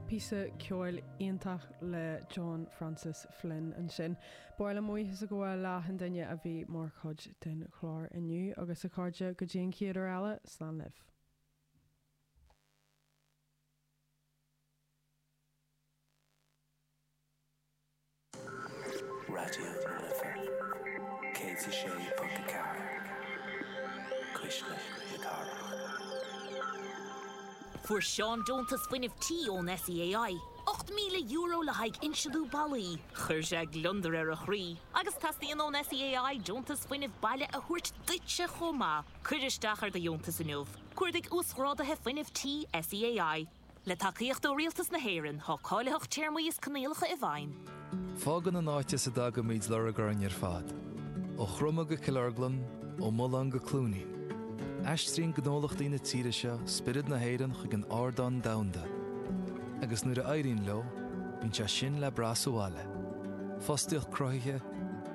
Píosa ceoil iontach le John Francis Flynn ansin. Ba mhaith liom buíochas a ghabháil le achan duine a bhí mar chuid den chlár inniu. Agus a chairde, go dtí an chéad uair eile, slán libh. Raidió na Life 106.4 Cuisle na Cathrach. Fuair Seán deontas fuinnimh tí ón SEAI, €8,000 le haghaidh insealú ballaí. Chuir sé gliondar ar a chroí agus teastaíonn ón SEAI deontas fuinnimh baile a thabhairt duitse chomh maith. Cuir isteach ar do dheontas inniu. Cuardaigh Uasghráduithe Fuinnimh Tí SEAI. Le tacaíocht ó Rialtas na hÉireann, tá cáilitheacht téarmaí is coinníollacha i bhfeidhm. Fágann an áit as a dtagaimid lorg orainn ar fad. Ó Chromadh go Cill Orglan, ó Mulán go Cluainín, aistríonn gnólachtaí na tíre seo spiorad na hÉireann chuig an ardán domhanda, agus nuair a éiríonn leo, bíonn sé sin le brath sa bhaile, fostaíocht cruthaithe,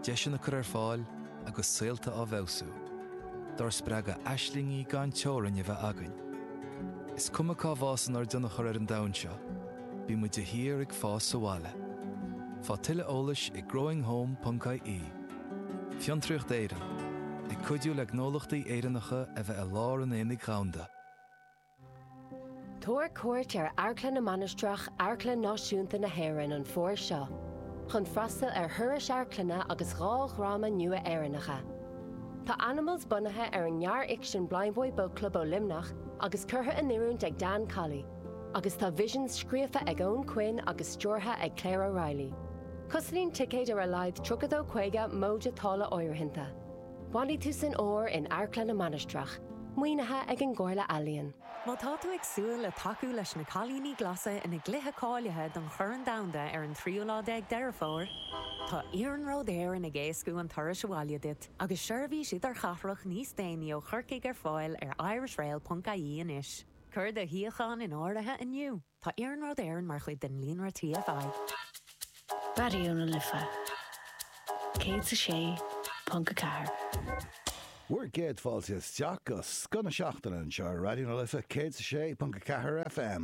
deiseanna cur ar fáil, agus saolta á bhfeabhsú, dár spreagadh aislingí gan teorainn a bheith againn. Is cuma cá bhfásann ár dtionchar ar an domhan seo, bímid de shíor ag fás sa bhaile. Faigh tuilleadh eolais ag growinghome.ie Fiontraíocht Éireann, ag cuidiú le gnólachtaí Éireannacha a bheith i lár an aonaigh dhomhanda. Tabhair cuairt ar Amharclann na Mainistreach, Amharclann Náisiúnta na hÉireann an fómhar seo chun freastal ar thurais amharclainne agus dhá dhráma nua Éireannacha. Tá Animals bunaithe ar an ngearrfhicsean Blindboy Boatclub ó Luimneach agus curtha in oiriúint ag Dan Colley, agus tá Visions scríofa ag Eoghan Quinn agus stiúrtha ag Claire O'Reilly. Cosnaíonn ticéid ar a laghad 32 50 móide táille áirithinte. Bhailigh tú san ár in Amharclann na Mainistreach, maoinithe ag an gComhairle Ealaíon. Má tá tú ag súil le tacú leis na Cailíní Glasa ina gcluiche cáilithe don Chorn Domhanda ar an tríú lá déag Deireadh Fómhair, tá Iarnród Éireann ag éascú an turais abhaile duit agus seirbhís idirchathrach níos déanaí ó Chorcaigh ar fáil ar irishrail.ie anois. Cuir do shuíochán in áirithe inniu! Tá Iarnród Éireann mar chuid den líonra TFI. Raidió na Life 106.4. Bhur gcéad fáilte isteach go scoth na seachtaine anseo ar Raidió na Life 106.4 FM.